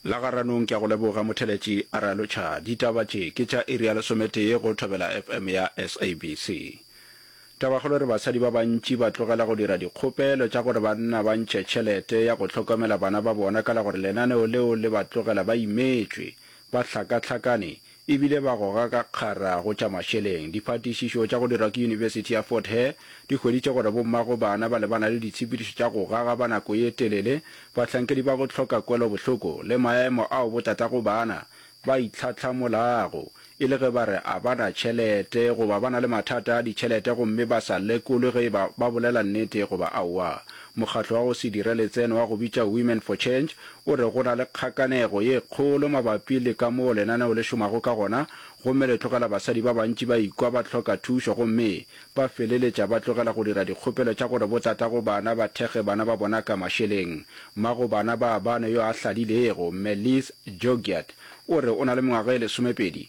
La Garanong ke a go leboga motheletši Aralo Cha. Ditaba tše ke tša iri ya lesometee go Thobela FM ya SABC. Tabakgolo re basadi ba bantši ba tlogela go dira dikgopelo tša gore banna ba ntšhe tšhelete ya go hlokomela bana ba bona ka la gore lenaneo leo le ba tlogela ba imetšwe, ba hlakahlakane, e bile ba goga ka kgara go tša mašeleng. Diphatišišo tša go dirwa ke Yunibesithi ya Fort Hare di hweditše gore bommago bana ba lebana le ditshepedišo tša go gaga ba nako ye telele, bahlankedi ba go hloka kwelobohloko le maemo ao botatago bana ba itlhahlamolago e le ge ba re a ba na tšhelete goba ba na le mathata a ditšhelete gomme ba sa lekolwe ge e ba ba bolela nnete goba aowa. Mokgatlo wa go se dire letseno wa go bitša Women for Change o re go na le kgakanego ye kgolo mabapi le ka moo lenaneo le šomago ka gona gomme le tlogela basadi ba bantši ba ikwa ba hloka thušo gomme ba feleletša ba tlogela go dira dikgopelo tša gore botatago bana ba thekge bana ba bona ka mašeleng. Mma go bana ba bane yo a hlalilego, Mme Liz Jogiat, o re o na le mengwaga e lesomepedi,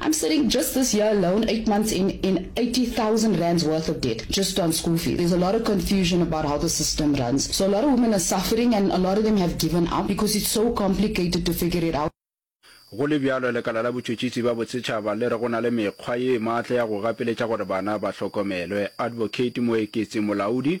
I'm sitting just this year alone, eight months in, in eighty thousand rands worth of debt just on school fees. There's a lot of confusion about how the system runs. So a lot of women are suffering and a lot of them have given up because it's so complicated to figure it out. Go le bjalo, Lekala la Botšhotšhisi bja Bosetšhaba le re go na le mekgwa ye maatla ya go gapeletša gore bana ba hlokomelwe. Advocate Moeketsi Molaodi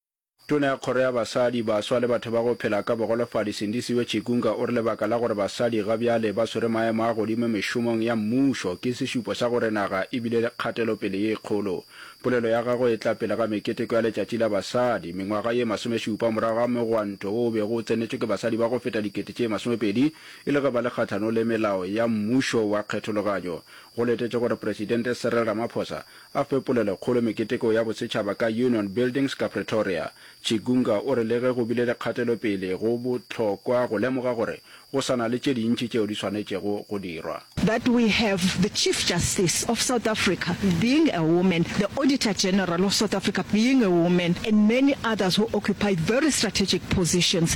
Tona ya Kgoro ya Basadi, Baswa le Batho ba go Phela ka Bogolofadi Sindisiwe Chikunga o re lebaka la gore basadi ga bjale ba swere maemo a godimo mešomong ya mmušo ke sešupo sa gore naga e bile le kgatelopele ye kgolo. Polelo ya gagwe e tla pele ga meketeko ya Letšatši la Basadi mengwaga ye masomešupa morago ga mogwanto wo o bego o tsenetšwe ke basadi ba go feta dikete tše masomepedi e le ge ba le kgahlano le melao ya mmušo wa kgethologanyo go letetšwe gore Presidente Cyril Ramaphosa A fe polelokgolo meketeko ya bosetšhaba ka Union Buildings ka Pretoria, Chigunga o re le ge go bile le kgatelopele, go bohlokwa go lemoga gore go sa na le tše dintši tšeo di swanetšego go dirwa. that we have the Chief Justice of South Africa being a woman, the Auditor General of South Africa being a woman and many others who occupy very strategic positions.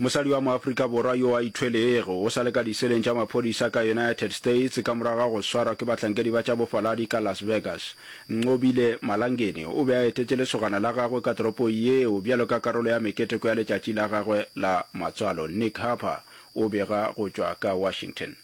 Mosadi wa mo-Afrika Borwa yo a ithwelego o sa le ka diseleng tša maphodisa ka United States ka morago ga go swarwa ke bahlankedi ba tša bofaladi ka Las Vegas. Nqobile Malangeni o be a etetše lesogana la gagwe ka toropong yeo bjalo ka karolo ya meketeko ya letšatši la gagwe la matswalo. Nick Harper o bega go tšwa ka Washington.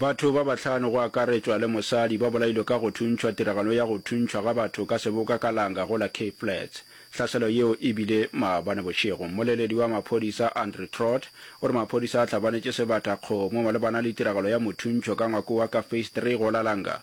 Batho ba bahlano go akaretšwa le mosadi ba bolailwe ka go thuntšhwa tiragalong ya go thuntšhwa ga batho ka seboka ka langa go la Cape Flats. Hlaselo yeo e bile maabane bošego. Mmoleledi wa maphodisa Andrew Trott o re maphodisa a hlabanetše sebata kgomo malebana le tiragalo ya mothuntšho ka ngwako wa ka Phase Three go la langa.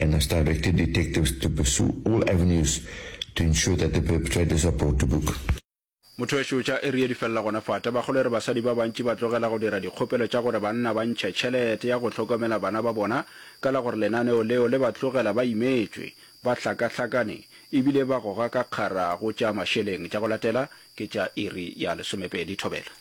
and has directed detectives to pursue all avenues to ensure that the perpetrators are brought to book. Mothwešu tša area di felela gona fa. Tabakgolo e re basadi ba bantši ba tlogela go dira dikgopelo tša gore banna ba ntšhe tšhelete ya go hlokomela bana ba bona ka la gore lenaneo leo le ba tlogela ba imetšwe, ba hlakahlakane e bile ba goga ka kgara go tša mašeleng. Tša go latela ke tša iri ya lesomepedi. Thobela.